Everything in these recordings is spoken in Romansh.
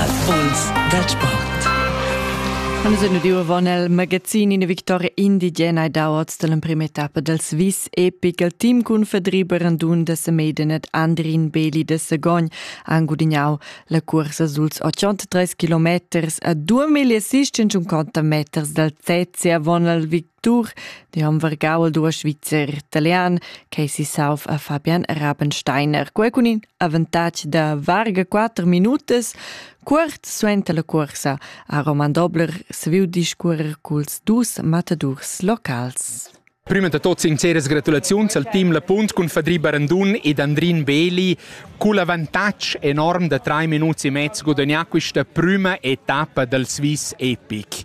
Impuls dal sport. Nus en udiu avon el magazin ina victoria indigena e dauots dall'emprima etappa del Swiss Epic el team cun Fedri Berandun da Semedenet Andrin Beli da Sagogn han gudignau la cursa suls 83 km a 2065 meters dal CC avon al vic Tour, die haben vergau duas Schweizer italian, Casey South a Fabian Rabensteiner. Quei cun in avantatg da varga 4 minutas, cuort suenter la cursa ha Roman Dobler saviu discuorer culs dus matadurs locals. Prima da tutti sinceras gratulazioni al team La Punt con Fadri Barandun ed Andrin Beli col avantatg enorm da 3 minuti e mezzo gudagnà questa prima etappa dal Swiss Epic.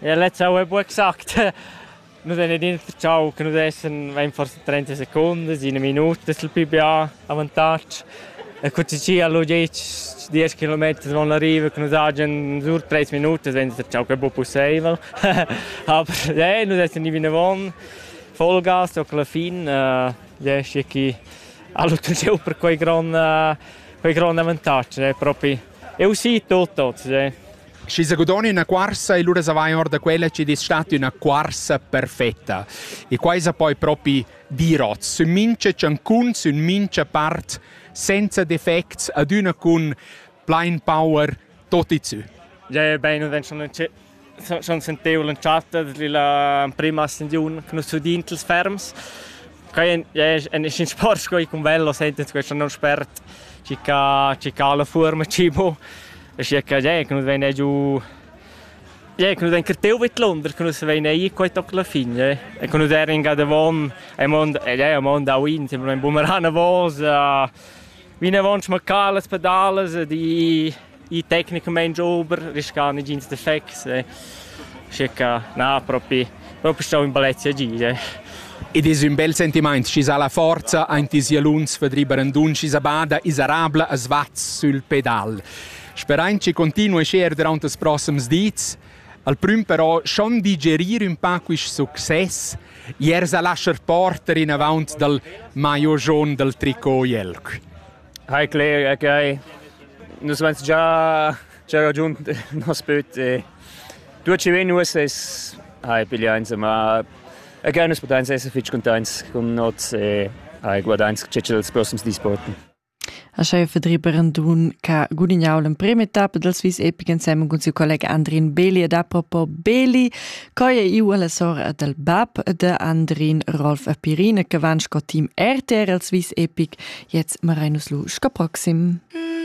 Ja, letztau è buca gesagt. Nous haben nicht vergeschaut, nous essen einfach 30 Sekunden, in einer Minute ein bisschen pipià, Avantage. E kurz ci allo 10 km che non arriva che nos agen sur 3 minuti wenn es ciao che bo possibel aber ja nous essen nie vinavon Vollgas auch la fin äh, ja schi chi allo che super quei gran äh, quei gran avantage eh, proprio e usì tutto sì. Schi se gudogna üna cuorsa e lura savain or da quella chi'd es stat üna cuorsa perfetta. E quai s'ha poi propi dir hoz. Sün mincha tschancun, sün mincha part, senza defects, adüna cun plain power, tuot sü. Ja, beh, nu vegn schon senteu l'entschatta d'la prima stagiun che nus udind ils ferms. Quai è in sport sco cun velo sentens questa non spert chi ca chi ca la fuorma chi bo e schi ca je che nus vein ei giu je che nus vein carteu vidlunder che nus vein ei quei toc la fin je e che nus eran ga davon e mond e je mond da win semplamein bumerana vos vinavon schmaccar las pedalas di i tecnicamein giu ober, riscar negins defects e circa na propi propi stau in balezia gide. Id es ün bel sentimaint schi sa la forza aint is jaluns vedri Brandun schi sa bada isarabla as vaz sül pedal. Sperain chi continua scher durant els prossams dits. Al prüm però schon digerir ün pa quist success, ier sa laschar porter in avant dal maior gion dal tricot Jelk. Hai cler che nus vains già già ragiunt nos böt e tuot chi vegn uossa es hai piglià insomma e che nus putains esser fich cuntaints cun nots e hai guardains che ch'els prossems dis portan. Aschia fedri Berendun che ha gudignau l'emprema etappa dals vis epic ensemen cun siu collega Andrin Beli ed apropos Beli Coi ei iu alla sora dal bab de Andrin Rolf Pirine che van sco team RTR els vis epic, jetzt marenus lu sco proxim. Mm.